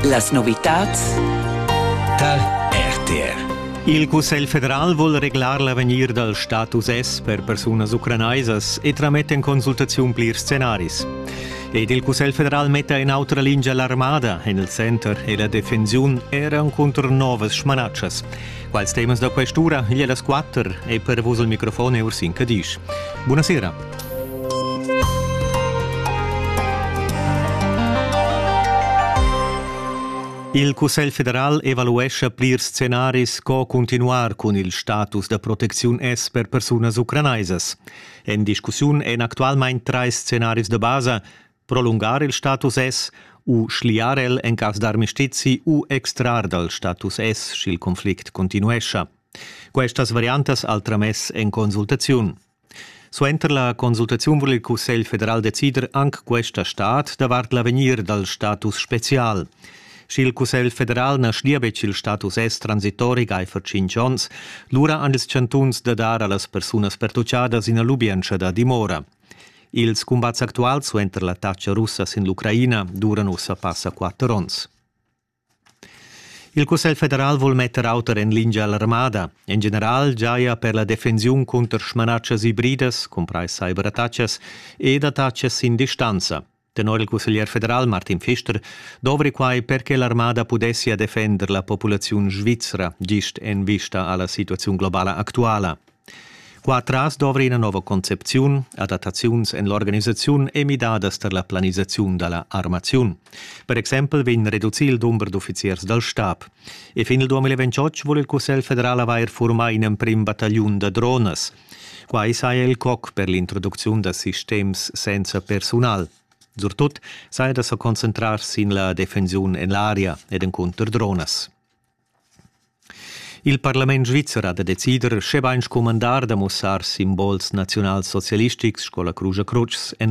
Las novitads tar RTR. Il Cussegl federal vul reglar l'avegnir dal status S per persunas ucranaisas e trametta en consultaziun plirs scenaris. Ed il Cussegl federal metta en autra lingia l'armada en il center e la defensiun era cunter novas smanatschas. Quals temas da quest'ura igl è las quatter e per vus il microfon è Ursin Cadisch. Buonasera. Il Cussegl federal evaluescha plir scenaris co continuar cun il status da protecziun S per persunas ucranaisas. En discussiun èn actualmain trais scenaris da basa, prolungar il status S u schliar el en cass d'armistizi u extrar dal status S, sch'il conflict continuescha. Questas variantas al tramess en consultaziun. Suenter la consultaziun vul il Cussegl federal decider anc questa stat davart l'avegnir dal status spezial. Sch'il Cussegl federal na schlia betg il status S transitori gaifer 5 onns, lura han ils chantuns da dar a las persunas pertutgadas ina lubientscha da dimora. Ils cumbats actuals suenter l'attacca russa sin l'Ucraina duran ussa passa quatter onns. Il Cussegl federal vul metter auter en lingia l'armada. En general giaja per la defensiun cunter smanatschas ibridas, cumprais cyberattacas ed attaccas sin distanza. Tenor il cusseglier federal Martin Pfister dovri quai per che l'armada pudessia defender la populaziun svizra gist en vista a la situaziun globala actuala. Qua tras dovri ina nova concepziun, adattaziuns en l'organisaziun e midadas tar la planisaziun da la armaziun. Per exempel vegn reducì il dumber d'uffiziers dal stab. E fin il 2028 vul il Cussegl federal avair furmà in emprim battagliun da dronas. Quai saja il coc per l'introducziun da sistems senza persunal. Surtut saja da sa concentrar sin la defensiun en l'aria ed encunter dronas. Il parlament svizzer ha da decider, sche bain scumandar da mussar simbols naziunalsocialistics sco la Crugia Crutsch en la